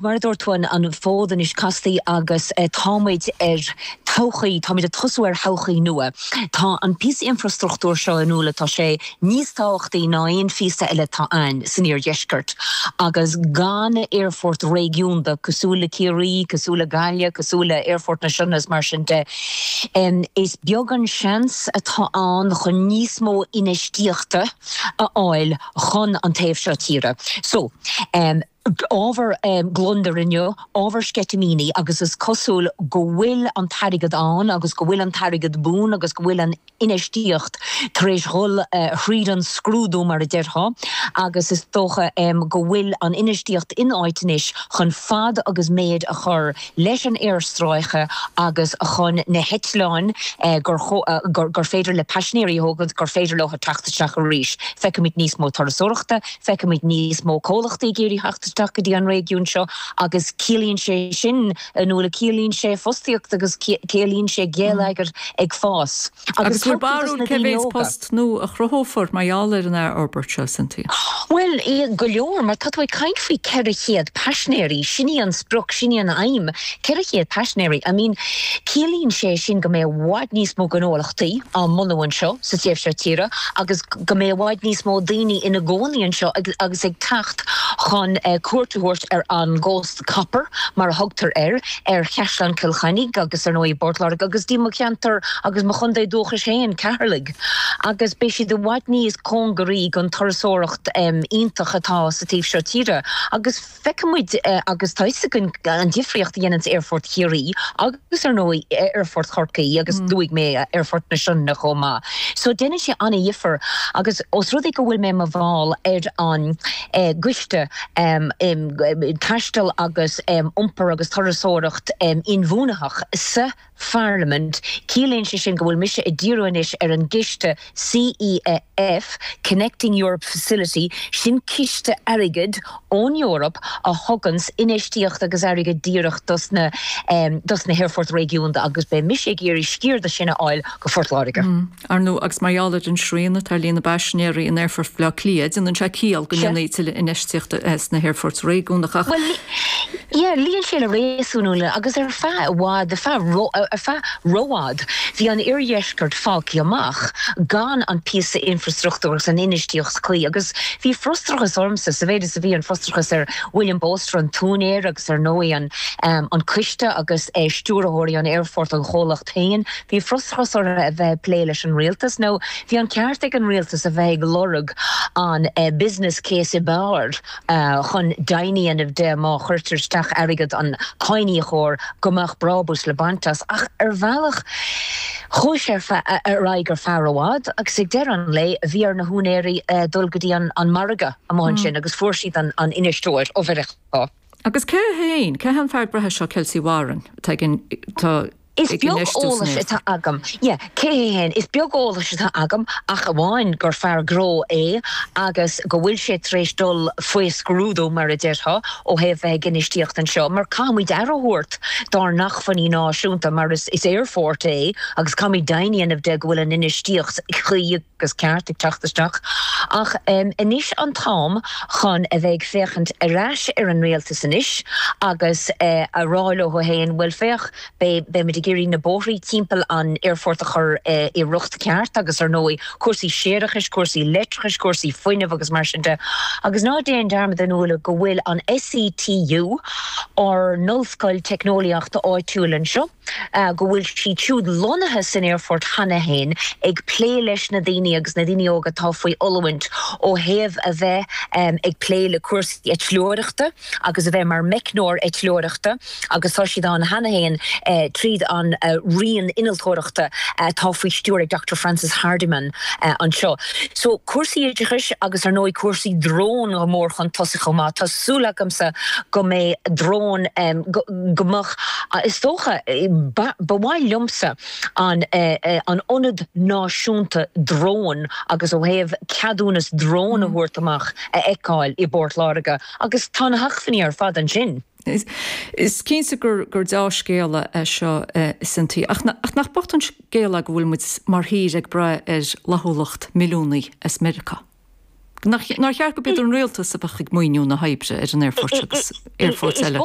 Mar a dúirt tú, an fód anois casta agus táimid ar todhchaí, táimid ag tosú ar thodhchaí nua. Tá an píosa infrastruchtúir seo in iúl, tá sé níos tábhachtaí ná aon phíosa eile atá ann san iardheisceart. Agus gan aerfort réigiúnda cosúil le Ciarraí, cosúil le Gaillimh, cosúil le hAerfort na Sionna is mar sin de, is beag an seans atá ann chun níos mó infheistíochta a fháil chun an taobh seo tíre. So. ábhar gliondair inniu, ábhar sceitimíní agus is cosúil go bhfuil an t-airgead ann agus go bhfuil an t-airgead buan agus go bhfuil an infheistíocht tar éis dhul thríd an scrúdú mar a déarfá agus is dócha go bhfuil an infheistíocht in áit anois chun fad agus méid a chur leis an aerstráice agus chun na heitleáin gur féidir le paisinéirí a thógaint gur féidir leo teacht isteach arís. Feicfimid níos mó turasóireachta, Feicfimid níos mó comhlachtaí ag iarraidh theacht isteach go dtí an réigiún seo agus ciallaíonn sé sin inniu, ciallaíonn sé fostaíocht agus ciallaíonn sé geilleagar ag fás. Agus bhfuil aon bharúil cé mhéid post nua a chruthófar mar gheall ar an aerfhorbairt seo, Cynthia? Bhuel, go leor, mar tá tú ag caint faoi 400 paisinéirí, sin í an sprioc, sin í an aidhm, 400 paisinéirí. I mean, ciallaíonn sé sin go mbeidh i bhfad níos mó gnólachtaí á mbunú anseo. sa taobh seo tíre agus go mbeidh i bhfad níos mó daoine ina gcónaí anseo agus ag teacht chun cuairt a thabhairt ar an gCósta Copair mar a thugtar air, ar Chaisleán Chill Chainnigh agus, ar ndóigh, i bPort Láirge agus dtí mo cheantar agus mo chontae dúchais féin, Ceatharlach, agus beidh siad i bhfad níos cóngaraí don turasóireacht iontach atá sa taobh seo tíre agus. Feicfimid, agus tá 'fhios againn, an difríocht a dhéanann Aerfort Chiarraí agus, ar ndóigh, Aerfort Chorcaí agus, luaigh mé, Aerfort na Sionna chomh maith. So, deineann sé an-dhifear agus os rud é go bhfuil mé mar bhall ar an gCoiste um Taisteal agus um Iompar agus Turasóireacht Inbhuanaithe sa pharlaimint. Ciallaíonn sé sin go bhfuil mise ag díriú anois ar an gciste CEF, Connecting Europe Facility, sin ciste airgid ón Eoraip a thuganns infheistíocht agus airgead díreach dos na, dos na haerfoirt réigiúnda agus beidh mise ag iarraidh sciar de sin a fháil do Phort Láirge. Ar ndóigh, agus mar gheall ar an srian atá ar líon na bpaisinéirí in Aerfort Bhaile Átha Cliath, déanann sé ciall go ndéanfaí tuilleadh infheistíochta sna haerfoirt réigiúnacha. Bhuel, yeah, luíonn sé le réasún agus ar feadh i bhfad, ar feadh, ar feadh rófhad, bhí an oirdheisceart fágtha amach gan an píosa infrastruchtúir agus an infheistíocht chuí agus bhí frustrachas ormsa, sa mhéid is a bhí an frustrachas ar William Bolster, an t-úinéir, agus ar ndóigh an coiste agus stiúrthóirí an aerfoirt, an chomhlacht. féin, bhí frustrachas orthu a bheith ag plé leis an rialtas, nó bhí an ceart ag an rialtas a bheith ag lorg an 'business case' ab fhearr chun deimhin a dhéanamh de má chuirtear isteach airgead an cháiníocóra go mbeadh brábús le baint as. Ach ar bhealach chuaigh sé ar aghaidh ar feadh i bhfad agus ag deireadh an lae bhí ar na húinéirí dul go dtí an margadh amuigh ansin agus fuair siad an t-infheisteoir ó Mheiriceá. Agus cé hé féin, cé hé an fear gnó seo Kelcy Warren atá againn? Is beag eolas atá agam, yeah, cé hé féin, is beag eolas atá agam ach amháin gur fear gnó é agus go bhfuil sé tar éis dul faoi scrúdú, mar a déarfá, ó thaobh bheith ag infheistíocht anseo mar caithfimid aire a thabhairt dár n-achmhainní náisiúnta mar is aerfort é agus caithfimid deimhin a dhéanamh de go bhfuil an infheistíocht chuí. agus ceart ag teacht isteach, ach anois an t-am chun a bheith ag féachaint ar ais ar an Rialtas anois agus a rá leo féin, bhuel féach, beidh muid ag iarraidh na bóithrí timpeall an aerfort a chur i riocht ceart agus ar ndóigh cúrsaí séarachais, cúrsaí leictreachais, cúrsaí fuinnimh agus mar sin de. Agus ná déan dearmad, a Nuala, go bhfuil an SETU, ár n-ollscoil teicneolaíochta áitiúil anseo, go bhfuil siad siúd lonnaithe san aerfort cheana féin ag plé leis na daoine agus na daoine óga atá faoi oiliúint ó thaobh a bheith ag plé le cúrsaí eitleoireachta agus a bheith mar meicneoir eitleoireachta agus tá siad ann cheana féin tríd an roinn innealtóireachta atá faoi stiúir ag Doctor Frances Hardiman anseo. So cúrsaí oideachais agus ar ndóigh cúrsaí drón go mór chun tosaigh chomh maith. Tá súil agamsa go mbeidh drón go. go mbeadh, is dócha. Ba mhaith liomsa an Ionad Náisiúnta Drón agus ó thaobh ceadúnas drón a thabhairt amach a fheiceáil i bPort Láirge agus tá na hacmhainní ar fad ansin. Is cinnte gur deá-scéala é seo cinnte, ach nach bocht an scéal é go bhfuil muid mar thír ag braith ar fhlaithiúlacht milliúnaí as Meiriceá? Nár cheart gurb í an Rialtas a bheadh ag maoiniú na hoibre ar an aerfort agus aerfoirt eile?